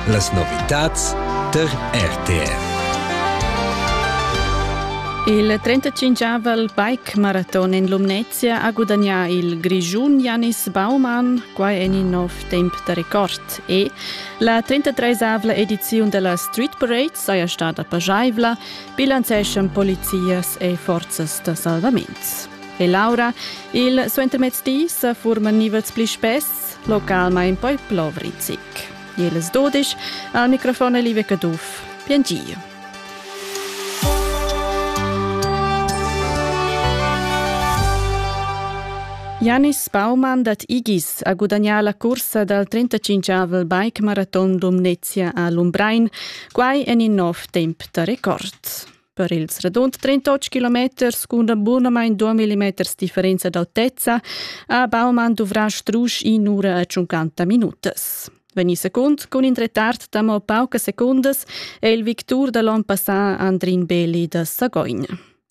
Las novitads tar RTR. Il 35avel bike maraton en Lumnezia ha gudagnà il Grischun Janis Baumann, quai en in nov temp da record. E la 33avla ediziun della Street Parade saja stada pajaivla, bilanceschan polizias e forzas da salvament. E Laura, il suentermezdi sa furman nivels pli spess localmain poi plovrizic. Ils dudisch al microfon Live Caduff. Bien Gio. Janis Baumann dat Igis a gudagnà la cursa dal 35-avel bike maraton Lumnezia a Lumbrein, quai en in nov temp da record. Per ils radund 38 kilometers cun bunamain 2 mm differenza d'autezza ha Baumann duvrà strusch in ura e 50 minutas. Vegni secund cun in retard da mo paucas secundas è il victur da l'onn passà Andrin Belli da Sagogn.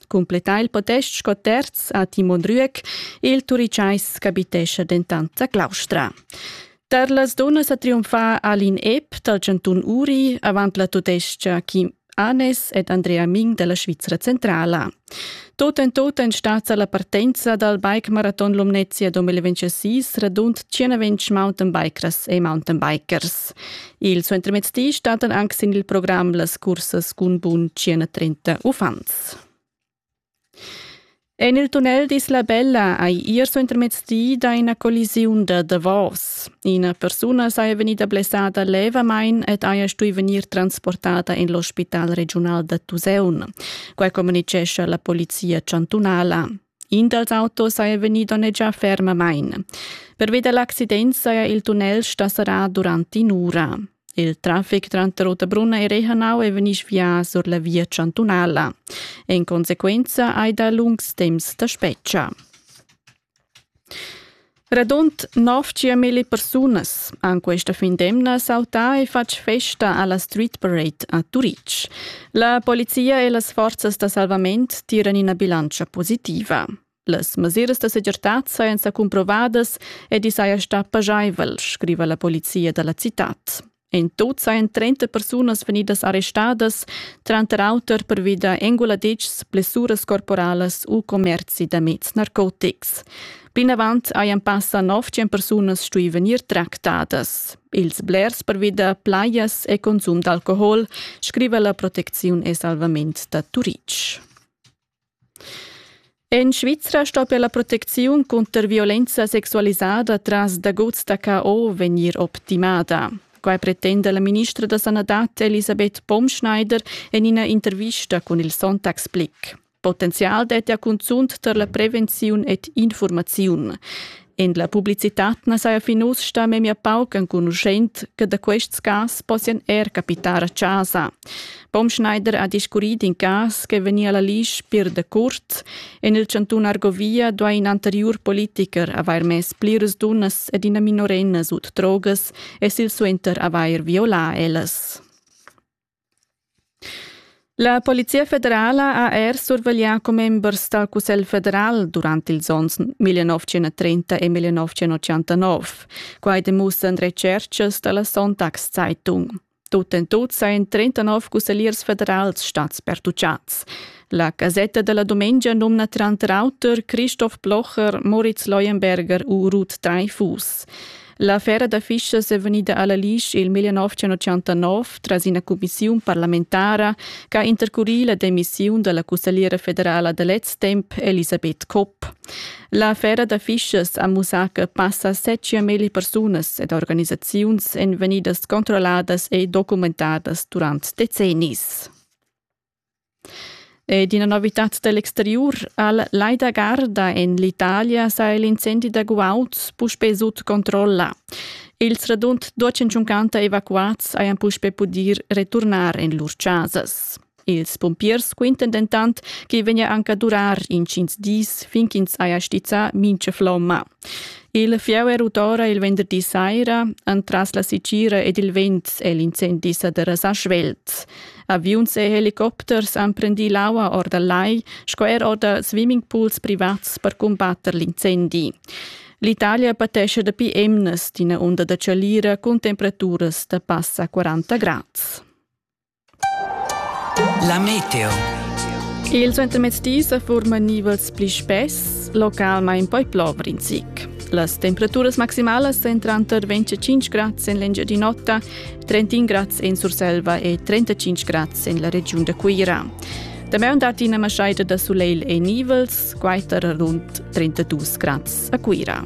Completà il podest sco terz a Timon Rüeck, il turicais capitescha dentant a Claustra. Tar las dunnas a triumfar Alin Epp dal Cantun Uri avant la tudescha Kim Anes ed Andrea Ming dalla Svizra centrala. Tot en tot en stazza la partenza dal bike marathon Lumnezia 2026 radund 120 mountainbikers e mountainbikers. Il suentermezdi stattan anche sin il programm las cursas cun bun 130 uffants. En il tunnel d'Isla Bella hai ier suentermezdi dà ina collisiun da davos. Ina persuna saja vegnida blessada levamain ed haja stuì vegnir transportada en l'ospital regiunal da Tuseun. Quai communitgescha la polizia chantunala. In dals autos saja vegnì donnegià fermamain. Pervi da l'accident saja il tunnel sta serrà durant in'ura. Il trafic tranter Ottabrunna e Rehanau è vegnì svià sur la via chantunala. En consequenza hai dà lungs temps da spetga. Radund 900.000 persunas han questa fin d'emna sautà e fatg festa a la Street Parade a Turitg. La polizia e las forzas da salvament tiran ina bilantscha positiva. Las mesiras da segirtad sajan sa cumprovadas ed i saja stà pajaivel, scriva la polizia da la citad. In tot sajan 30 persunas vegnidas arrestadas, tranter auter pervi da enguladitschs, blessuras corporalas u commerzi da meds narcotics. Plinavant hajan passa nov tschient persunas stuì vegnir tractadas. Ils blers pervi da plajas e consum d'alcohol, scriva la Proteziun e Salvament da Turitg. En Svizra stoppia la protecziun cunter violenza sexualisada tras daguts da KO vegnir optimada. Quai pretenda la ministra da sanadad Elisabeth Baumschneider en ina intervista cun il Sonntagsblick. Potenzial dettia cunzunt tar la prevenziun ed informaziun. En la publicitad na saja fin uss stà memia pauc enconuschent che da quests cas possian er capitar a chasa. Baumschneider ha discurrì d'in cas che vegnia la l'isch pir da curt. En il chantun Argovia duai in anteriur politicher avair mess pliras dunnas ed ina minorenna sut drogas e silsuenter avair violà ellas. La Polizia federala ha er surveglià commembers dal Cussegl federal durant ils onns 1930 e 1989. Quai demussan retschertgas da la Sonntagszeitung. Tut en tut sajan 39 cussegliers federals stads pertutgads. La casetta della domenica nomna tranter auter Christoph Blocher, Moritz Leuenberger u Ruth Dreifuß. La fera da fischas è vegnida a la Lisch il 1989 tras ina cumissiun parlamentara che ha intercurì la demissiun da la cussagliera federala da lez temp Elisabeth Kopp. La fera da fischas ha mussà che passa 7.000 persunas ed organisaziuns èn vegnidas controlladas e documentadas durant decennis. Ed ina novitad da l'exteriur al Lai da Garda en l'Italia sa il incendi da guauds puspè sut controlla. Ils radund 250 evacuads hajan puspè pudì returnar en lur chasas. Ils pumpiers quintan dentant ch'i vegnia anc a durar intgins dis fin ch'ins haja stizzà mintga flomma. Il fieu er utora il venderdi saira, entras la sicira ed il vent è l'incendi sa derasà svelt. Aviuns e helicopters han prendì l'aua or dal lai sco er or da swimmingpools privats per cumbatter l'incendi. L'Italia patesce dapi emnas d'ina onda da chalira cun temperaturas da passa 40 grad. La meteo. Il suentermezzdi sa forma nivels pli spess, localmain poi plover in zic. Las temperaturas maximalas èn tranter 25 grads en l'Engiadin'Ota, 31 grads en Surselva e 35 grads en la regiun da Cuira. Damaun dat ina maschaida da sulegl e nivels, quai tar rund 32 grads a Cuira.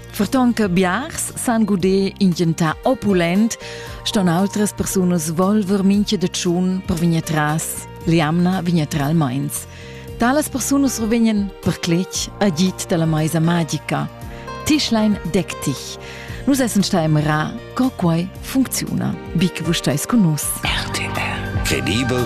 Ferton che biars san guder in gentà opulent, ston outras persunas volver mincha da tschun per vegnir tras l'jamna vignetralmains. Talas persunas rovegnan per cletg agit dalla maisa magica. Tischlein deck dich. Nus essen stai mera, co quai funcziuna. Bic vus stais con nus. RTL. Credibel